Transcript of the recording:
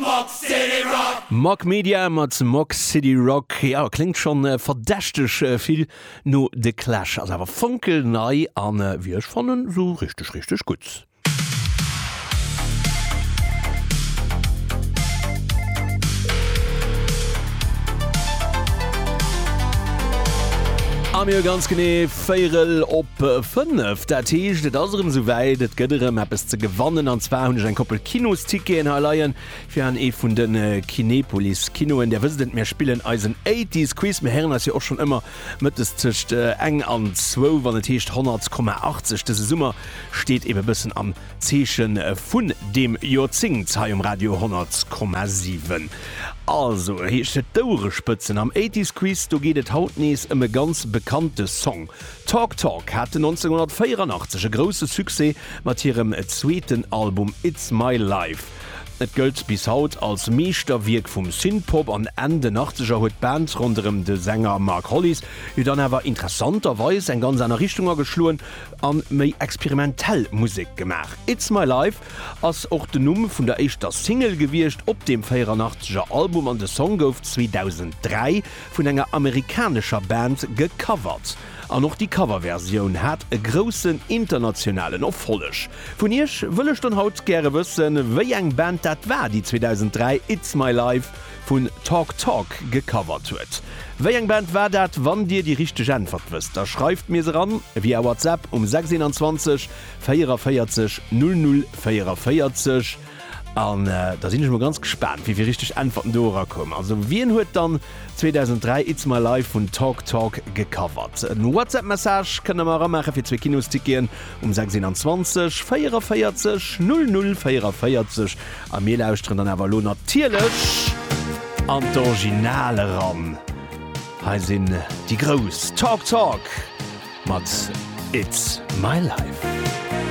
Mock City Rock. Mock Media mat Mock City Rock. Jo, kléngt schonn verdächteg vill no The Clash, ass awer fonkelnei a wéi ech fannen esou richteg richteg gutt. A mir hu ganz genee. Véirel op 5, dat heescht et ass erëm souwäit, et gëtt erëm eppes ze gewannen an zwar hunn ech eng Koppel Kinosticketen hei leien fir an ee vun de Kinepolis Kinoen. Där wësst et, mir spillen eisen Eighties Quiz, mir héieren eis jo och schonn ëmmer mëttes tëscht eng an zwou, wann et heescht 100,80. Dëse Summer steet ebe bëssen am. Zeeche vun deem Joerzéngt hei um Radio 10,7. Also heescht et d'Ouerespëtzen am Eighties Quiz. Do geet et haut nees ëm e ganz bekannte Song. Talk Talk haten 1984 e grousse Succès mat hirem zweeten Album It's My Life. Et gëllt bis haut als Meeschterwierk vum Synthpop an Enn den Achtzeger huet d'Band ronderëm de Sänger Mark Hollis jo dann awer interessanterweis eng ganz aner Richtung ageschloen. an méi experimentell Musek gemaach. It's My Life ass och den Numm vun der éischter Single gewiescht op deem 84 er Album an de Song gouf 2003 vun enger amerikanescher Band gecovert. An och déi Coverversioun hat e groussen internationalen Erfolleg. Vun iech wëll ech dann haut gäre wëssen, wéi eng Band dat war, déi 2003 It's My Life vun Talk Talk gecovert huet. Wéi eng Band war dat? Wann dir déi richteg Äntwert wësst, da schreift mir se eran via WhatsApp um 621 44 00 44 an da sinn ech mol ganz gespaant wéi vill richteg Äntwerten do erakoumen. Also wien huet dann 2003 It's My Life vun Talk Talk gecovert? En WhatsApp Message kënnt der mer eramaache fir zwee Kinosticketen um 621 44 00 44. A mir lauschteren dann awer elo natierlech an d'Original eran. Hei sinn déi Grouss, Talk Talk mat It's My Life.